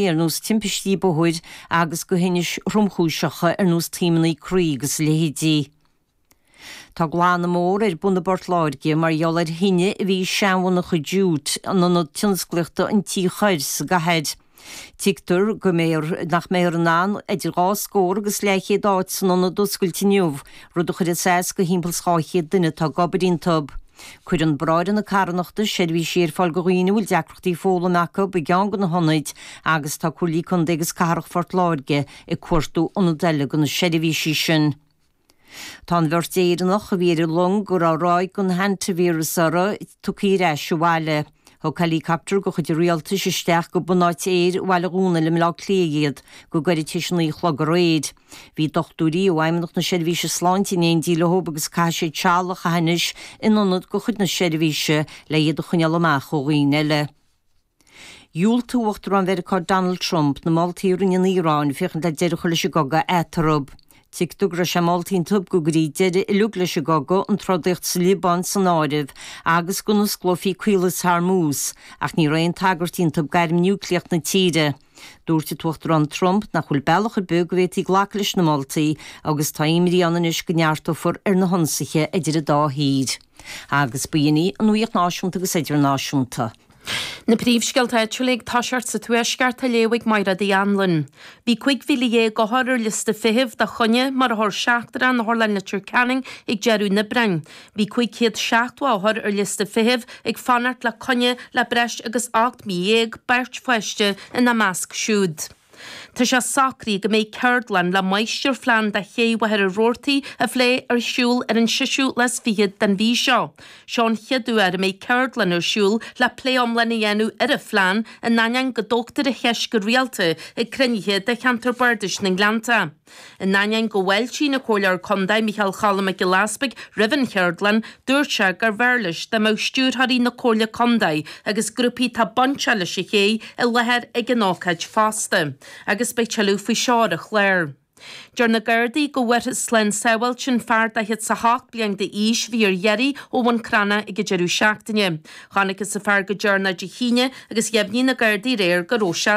ar nós timpistí bóthair agus go thinnis thromchúiseacha ar nós taomannaí croí agus a leithéidí. Tá glanadh mór ar bun i bPort Láirge mar gheall ar thine a bhí i seanmhonarcha Jute, in ionad tionsclaíochta an Tí Choir sa gcathair. Tuigtear go nach mbeifear in ann idir dhá scór agus leathchéad áit san ionad a oscailt inniu, rud a chuirfeas as go thimpeall is dhá chéad duine atá ag obair iontub. Cuireann Bráithre na Carthanachta seirbhísí ar fáil go dhaoine a bhfuil deacrachtaí foghlaim acu i gceann de na hionaid agus tá Comhairle Contae agus Cathrach Phort Láirge ag cuartú ionad eile do na seirbhísí sin. Tá an bheirt Éireannach a bhí ar an long go raibh ráig den hantavirus uirthi tugtha ar ais abhaile. Thug helicopter de chuid an Rialtais isteach go bunáit aeir Bhaile Dhónaill i mBleá Cliath iad go gairid tar éis a naoi a chlog aréir. Bhí dochtúirí ó Fheidhmeannacht na Seirbhíse Sláinte in éindí leo agus caithfidh siad seal a chaitheamh anois in ionad de chuid na seirbhíse le hiad a choinneáil amach ó dhaoine eile. Dhiúltaigh Uachtarán Mheiriceá Donald Trump na moltaí a rinne an Iaráin féachaint le deireadh a chur leis an gcogadh eatarthu. Tuigtear go raibh sé molta iontub go gcuirfí deireadh uilig leis an gcogadh, an trodaíocht sa Liobáin san áireamh, agus go n-osclófaí Caolas Hormuz, ach ní raibh aon tagairt iontub d'airm núicléach na tíre. Dúirt an tUachtarán Trump nach bhfuil bealach ar bith go bhféadfaí glacadh leis na moltaí agus tá imní ann anois go neartófar ar na hionsaithe idir an dá thír agus ba shin é an nuaíocht náisiúnta agus idirnáisiúnta. Na príomhscéalta áitiúla ag toiseacht sa Tuaisceart á léamh ag Mairéad Uí Anluain. Bhí 15,000 othar ar liosta feithimh do choinne mar othar seachtrach in Otharlann Leitir Ceanainn ag deireadh an Aibreáin. Bhí 570 othar ar liosta feithimh ag fanacht le coinne le breis agus ocht mí dhéag, beirt pháiste ina measc siúd. Tá sé socraithe go mbeidh ceardlann le máistirphlean de Ché Mhachaire Rabhartaigh a phlé ar siúl ar an seisiú lá is fiche den mhí seo. Seo an chéad uair a mbeidh ceardlann ar siúl le plé iomlán a dhéanamh ar an phlean, in ainneoin go dtógtar an cheist go rialta ag cruinnithe de Cheantar Bardais na nGleanntach. In ainneoin go bhfáiltíonn an Comhairleoir Contae Micheál Cholm Mac Giolla Easbuig roimh an Cheardlann, dúirt sé gurbh fhearr leis dá mbeadh Stiúrthóirí na Comhairle Contae agus grúpaí atá bainteach leis an ché i láthair ag an ócáid fosta, agus beidh tuilleadh faoi seo ar an chlár. Deir na Gardaí go bhfuarthas slán sábháilte an fear 48 bliain d'aois a bhí ar iarraidh ó Bhun Cranncha ag an deireadh seachtaine. Chonacthas an fear go deireanach Dé hAoine agus dheimhnigh na Gardaí aréir go raibh sé